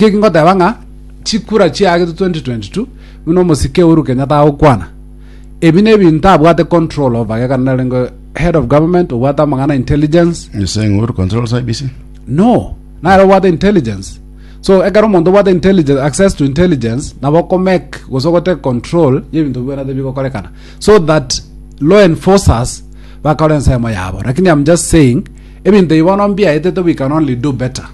Naki ngoteba ng'a chikura chiagetwe 2022 buna omosike Uhuru Kenyatta agokwana, ebi nebinto abwate control over gekana narenge head of government obwate amang'ana intelligence You're saying Uhuru controls IBC? no nare obwate intelligence so ekero omonto obwate intelligence access to intelligence nabo okomake gose ogote control y'ebinto bibwenerete bigokorekana so that law enforcers bakore ensemo yabo lakini I'm just saying ebinto ebi bono mbiaetete we can only do better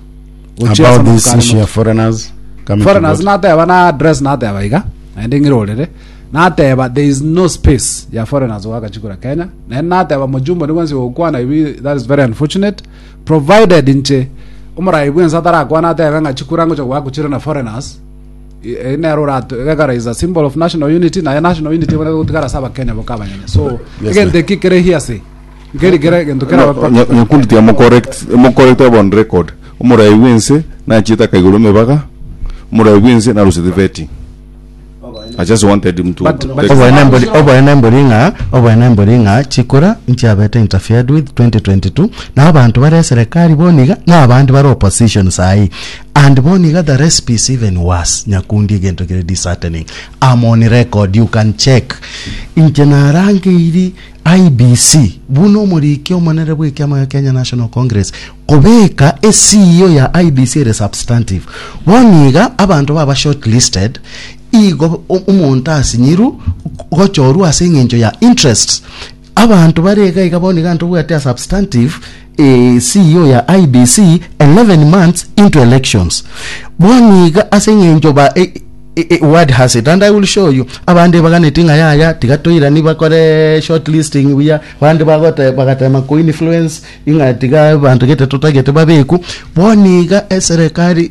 gochia ase About this amatuko are issue ya moto. foreigners coming to foreigners God. nateba na address nateba iga naende ng'ire orere nateba there is no space ya foreigners goaka chikura kenya naende nateba mojumbo nigo nse gokwana ebi that is very unfortunate provided inche omorai bwense atarakwana atebe ng'a chikura ngocha goakwa chire na foreigners I- e- nero orato egekara is a symbol of national unity naye national unity eboneka gotigara ase abakenya boka abanyene so Yes, egento sir. eki kere hearsay Nkeri kera egento kera No, nya- bakora. nyakundi tiamocorrect mocorrect upon record omoraai bwense nachiete akaigoro emebaga omoraai bwense narosete vetting i just wanted him to But- to but- take- Oboene mbori oboene mbori ng'a oboene mbori ng'a chikura nchiabete interfered with 2022 na abanto bare eserekari bono iga na abande bare opposition sahi and bono iga the recipe is even worse nyakundi egento kere disheartening I'm on record you can check inche narangeirie IEBC, buna omoriki omonene bw'ekiama gia Kenya National Congress, kobeka esiio ya IEBC ere substantive. Bono iga abanto baba shortlisted igo omonto asinyiru gochorwa ase eng'encho ya interests. Abanto bare iga iga bono iga ntobwate a substantive CEO ya IEBC 11 months into elections bono iga ase eng'encho ba e, e, e, word has it and I will show you abande baganeti ng'a yaya tiga toirani bakore short listing buya bande bagote bagatema ko influence ing'a tiga bantu gete totagete babeku bono iga eserekari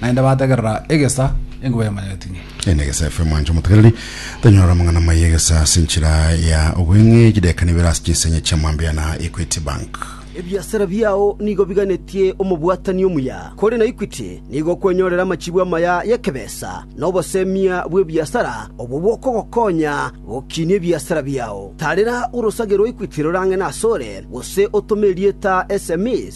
Naende bategerera egesa enkuba ya manyetini. Ende egesa FM anche omotegereri tanyora amang'ana amaya egesa ase enchera ya obweng'e chideka nibere ase chinsenya chia mambia na Equity Bank. Ebiasara biao nigo biganetie omobwatani omuya, kore na Equity nigo okwenyorera amachibu amaya y'ekebesa na obosemia bw'ebiasara obwo bokogokonya gokinia ebiasara biao. Tarera orosage rwa Equity rorang'e nasore, gose otome erieta sms.